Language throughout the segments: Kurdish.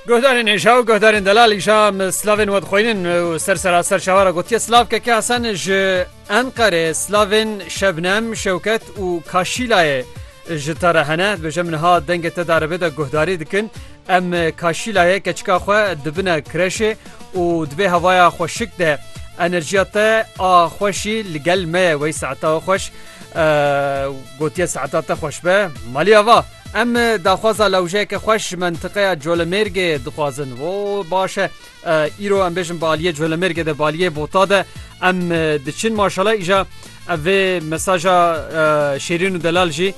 Guhdarên êşa û guhdarên delal îşa slavên we dixwînin û ser seraser şawara gotiye slav keke Hesen ji Enqerê slavên Şebnem, Şewket û Kaşîlayê ji te re hene dibêje min ha dengê te darebe de guhdarî dikin em Kaşîlayê keçika xwe dibine kireşê û dibê hevaya xweşik de enerjiya te a xweşî li gel me ye wey saeta xweş gotiye saeta te xweş be malî ava. Em daxwaza lewjeyeke xweş ji mentiqeya Colemêrgê dixwazin. Wo baş e. Îro em bêjin bi aliyê Colemêrgê de baliyê bota de em diçin maşala îja ev vê mesaja şêrîn û delal jî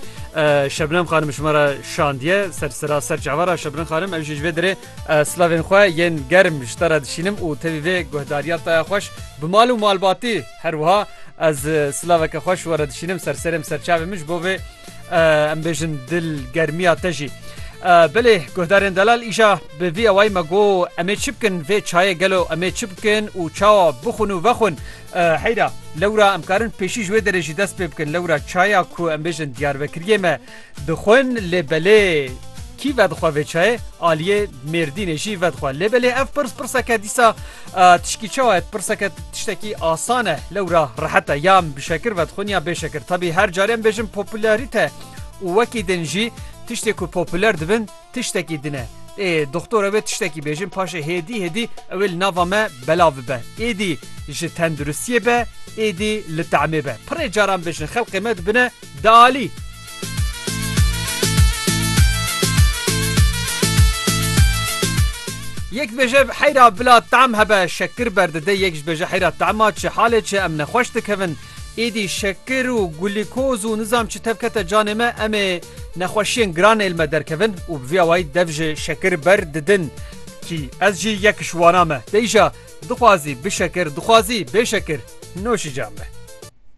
Şebnem xanim ji me re şandiye ser sira ser çavara Şebnem xanim ew jî ji vê dirê slavên xwe yên germ ji te re dişînim û tevî vê guhdariya taya xweş bi mal û malbatî her wiha ez silaveke xweş were dişînim ser serêm serçavê min ji bo vê Em bêjin dil germiya te jî. Bilê guhdarên delal îja bi vî awayî me got em ê çi bikin vê çayê gelo em ê çi bikin û çawa bixwin û vexwin heyra lewra em karin pêşî ji wê derê jî dest pê bikin lewra çaya ku em bêjin diyarbekiriyê me dixwin lê belê kî vedixwe vê çayê aliyê mêrdînê jî vedixwe lê belê ev pirs pirseke dîsa Tişkî çawa et pirseke tiştekî asan e lewra rehete yan bişekir vedxwin ya bêşekir tabî her carên bêjin popularîte û wekî din jî tiştê ku populer dibin tiştekî din e. Ê doktor ew ê tiştekî bêjin paşê hêdî hêdî ew ê li nava me belav bibe. Êdî ji tenduristiyê be êdî li temê be. Pirê caran bêjin xelkê me dibine Dialî. Yek dibêje heyra bila tam hebe şekir berdide yek dibêje heyra tema çi halê çi em nexweş dikevin êdî şekir û gulîkoz û nizam çi tevkete canê me em ê nexweşiyên giran êl me derkevin û bi vî awayî dev ji şekir ber didin. Kî ez jî yek ji wana me. Deyja dixwazî bişekir dixwazî bêşekir noşîca me.